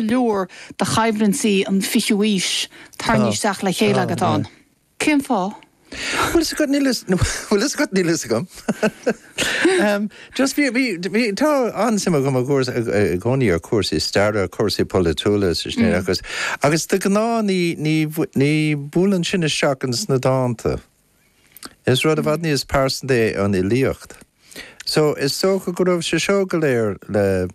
leor de choimhlintí an fichiú aois tarraingthe isteach le chéile agat ann. Cén fáth? Bhuel, fhios agat, níl fhios, bhuel, fhios agat, níl fhios agam. Just, bhí, bhí, tá an-suim agam i gcúr, i gcónaí ar chúrsaí staire, cúrsaí polaitiúla sa sin, agus, agus de ghnáth ní, ní, ní buaileann sin isteach ins na dánta. Is rud i bhfad níos pearsanta é an fhilíocht. So, is dócha go raibh sé seo go léir le,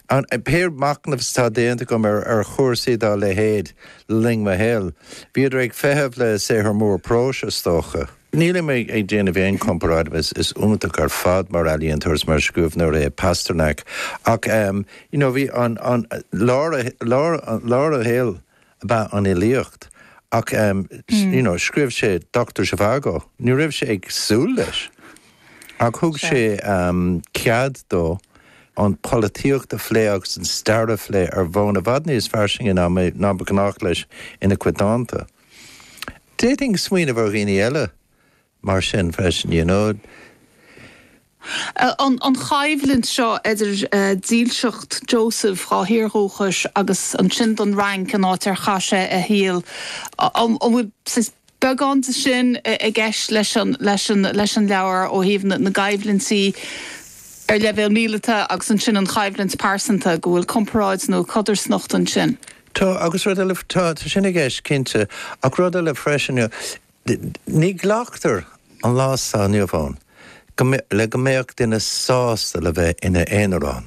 an, pé machnamh atá déanta agam ar, ar chúrsaí dá leithéid le linn mo shaoil, bhíodar ag feitheamh le saothar mór próis, is dócha. Nílim ag, ag déanamh aon chomparáid, is, is iontach ar fad mar ealaíontóir is mar scríobhneoir é Pasternak ach, em, you know, bhí an, an, lár a, lár, lár a shaoil, ab ea an fhilíocht ach you know scríobh sé Doctor Zhivago, ní raibh sé ag súil leis ach thug sé cead dó an pholaitíocht a phlé agus an stair a phlé ar bhonn i bhfad níos fairsinge ná ná ba ghnách leis ina chuid dánta. D'fhéadfainn smaoineamh ar dhaoine eile Mar sin freisin, you know. an choimhlint seo idir dílseacht Joseph dhá thír dhúchais agus ansin don Fhrainc, an áit ar chaith sé a shaol, an bhfuil beagán de sin i gceist leis an leabhar ó thaobh na gcoimhlintí ar leibhéal míleata agus ansin an choimhlint pearsanta, go bhfuil comparáid nó codarsnacht ansin? Tá, agus rud eile, tá sin i gceist, cinnte, ach rud eile freisin, you know. Ní ghlactar an lá atá inniu ann le go mbéadh duine sásta le bheith ina aonarán.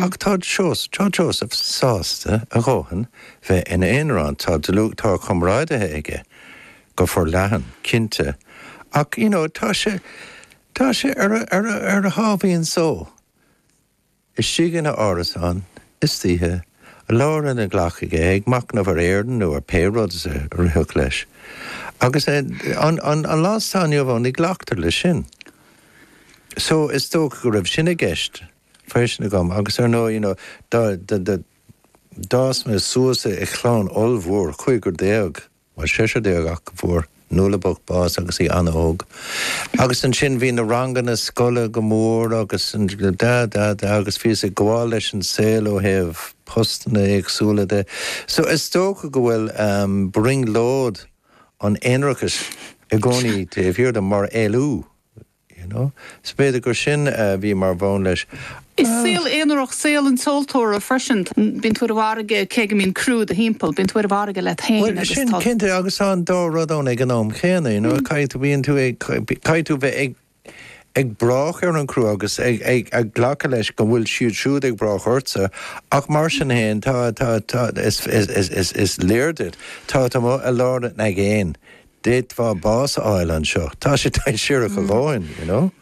Ach tá Joseph sásta a dhóthain bheith ina aonarán. Tá dlúthchomrádaithe aige go forleathan, cinnte, ach you know tá sé tá sé ar a sháimhín só. istigh ina árasán, istoíche, leabhar ina ghlac aige ag machnamh ar Éirinn nó ar pé rud is a rithfeadh leis. Agus an an lá atá inniu ann, ní ghlactar leis sin. So, is dócha go raibh sin i gceist freisin agam agus ar ndóigh, you know, dá dá dá d'fhás mé suas i chlann ollmhór, cúigear déag, Bhuel seisear déag ach go bhfuair Nuala bocht bás agus í an-óg. Agus ansin bhí na ranganna scoile go mór agus da da da agus bhíos ag gabháil leis an saol ó thaobh postanna éagsúla de. So is dócha go bhfuil brionglóid an aonrachais i gcónaí taobh thiar de mar éalú. you know so b'fhéidir gur sin a bhí mar bhonn leis. Is saol aonarach saol an tseoltóra freisin. Bíonn tú ar an bhfarraige cé go mbíonn criú i do thimpeall, bíonn tú ar an bhfarraige leat féin Cinnte agus tá an dá rud ann ag an am céanna, you know caithfidh tú, bíonn tú ag, caithfidh tú bheith ag ag brath ar an gcriú agus ag ag ag glacadh leis go bhfuil siad siúd ag brath ortsa ach mar sin féin tá tá tá is is is is is léir duit tá tá mé i lár na haigéine d'fhéadfadh mé bás a fháil anseo, tá sé dainséarach a dhóthain, you know.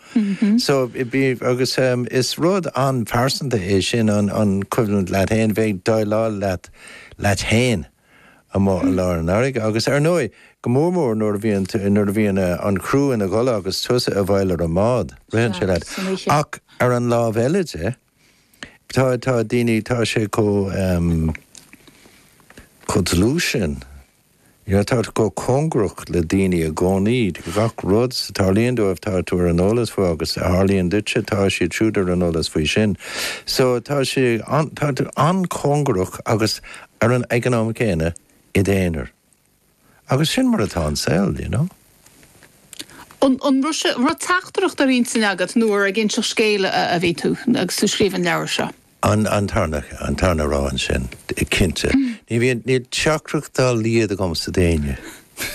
So, bí, agus ehm, is rud an-phearsanta é sin, an, an choimhlint leat fhéin, bheith ag déileáil leat, leat fhéin amuigh i lár an fharraige agus ar ndóigh, go mór mór nuair a bhíonn tú, nuair a bhíonn eh, an criú ina gcodladh agus tusa i bhfeidhil ar an mbád, ritheann sé leat. Ach ar an lámh eile de. Tá, tá daoine, tá sé chomh, chomh dlúth sin, you know, tá tú chomh cóngarach le daoine i gcónaí, gach rud a tharlaíonn dóibh tá tú ar an eolas faoi agus a tharlaíonn duitse tá siad siúd ar an eolas faoi sin. So tá sé an, tá tú an-chóngarach agus ar an, ag an am céanna, id aonar. Agus sin mar atá an saol, you know. An, an raibh sé, an raibh teachtaireacht ar intinn agat nó ar ag inseacht scéil a, a bhí tú agus tú scríobh an leabhar seo? An, an tarna, an tarna rogha ansin, cinnte. Ní bhíonn, níl teachtaireacht dá laghad agamsa d'éinne,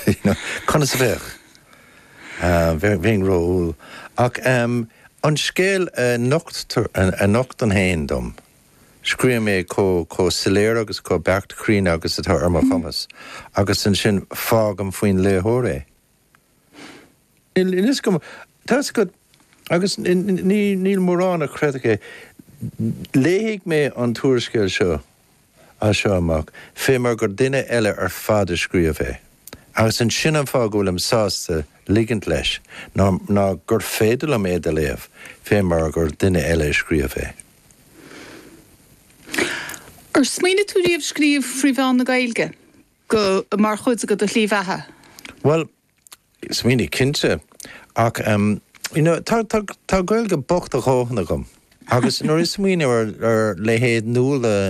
you know. Conas a bheadh? Bheinn, bheinn ró-umhal. Ach an scéal a nocht, a nochtann é féin dom, Scríobhaim é chomh chomh soiléir agus chomh beacht cruinn agus atá ar mo chumas, agus ansin fágaim faoin léitheoir é. So tá a fhios agat, agus níl mórán a chreidfeadh é, léifidh mé an t-úrscéal seo as seo amach, fé mar gur duine eile ar fad a scríobh é, agus sin an fáth go bhfuilim sásta ligint leis ná gur féidir liom é do léamh fé mar gur duine eile a scríobh é. Ar smaoinigh tú riamh scríobh trí mheán na Gaeilge, go, mar chuid de do shlí bheatha? Bhuel, smaoinigh, cinnte. Ach em, you know, tá, tá, tá Gaeilge bhocht a dhóthain agam. Agus nuair a smaoinim ar, ar leithéid Nuala